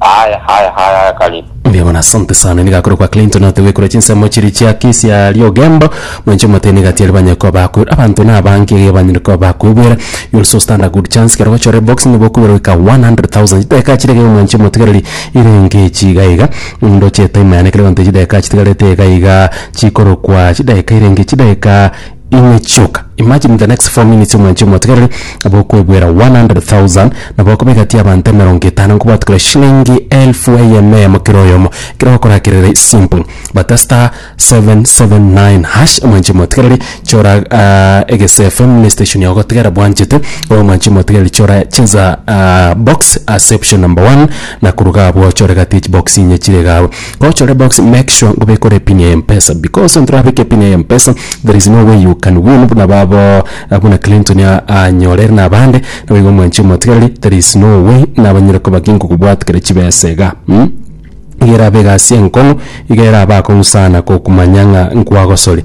Haya haya haya haya karibu. Mbuya mono asante sana niga akore kwa Clinton ate gwekora chinsemo chiria chia kesi ya riogembo mwenche omotene gati aria banyare koba bakwe abanto na abange iga banyare koba bakwebwera you also stand a good chance kero gochora ebox nigo okobera goika 100,000 chidakika chire iga mwanche omotigereri ire enke echi iga iga ndoche etime yane kere egento chidakika chitigarete iga iga chikorokwa chidakika ire enke chidakika Inwe chioka, imagine in the next four minutes omwanchi omotegereri nabo okoebwera 100,000 nabo okoba egati y'abanto emerongo etano nkobwate kore shilingi elfu eyemo eyemo kera oyomo ekero ogokora kerere simple but star 779 hash omwanchi omotegereri chora ah, egese fm ne station yao gotegera bwanchete obe omwanchi omotegereri chora cheza ah, box ase option number one na koruga abwo ochore gati echibox inye chire iga abwo Gochore box make sure ngobekora epin ya mpesa because ontorabeke epin ya mpesa there is no way you can win buna babo buna Clinton anyore ere nabande naboigo omwanche omotigereri there is no way nabanyare koba kinkokobwat kere chibesa iga mm iga erabe egasi enkong'u iga erabe akong'u sana gokumanya ng'a nkwagosori.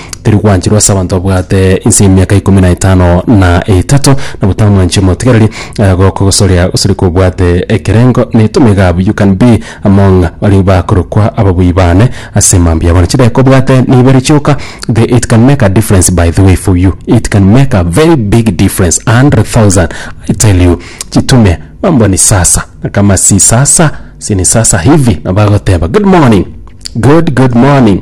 teri gwancherwa ase abanto babwate inse y'emiaka ikomi na etano na etato, na botamwanchi omotigareri eh, gokogosoria gosori kobwate ekerengo neto megabu you can be among baria bakorokwa ababui bane ase mambia yabo. Na chidaki kobwate neibere chioka the it can make a difference by the way for you it can make a very big difference 100,000 I tell you chitume mambo ni sasa na kama si sasa si ni sasa hivi na bagoteba good morning good good morning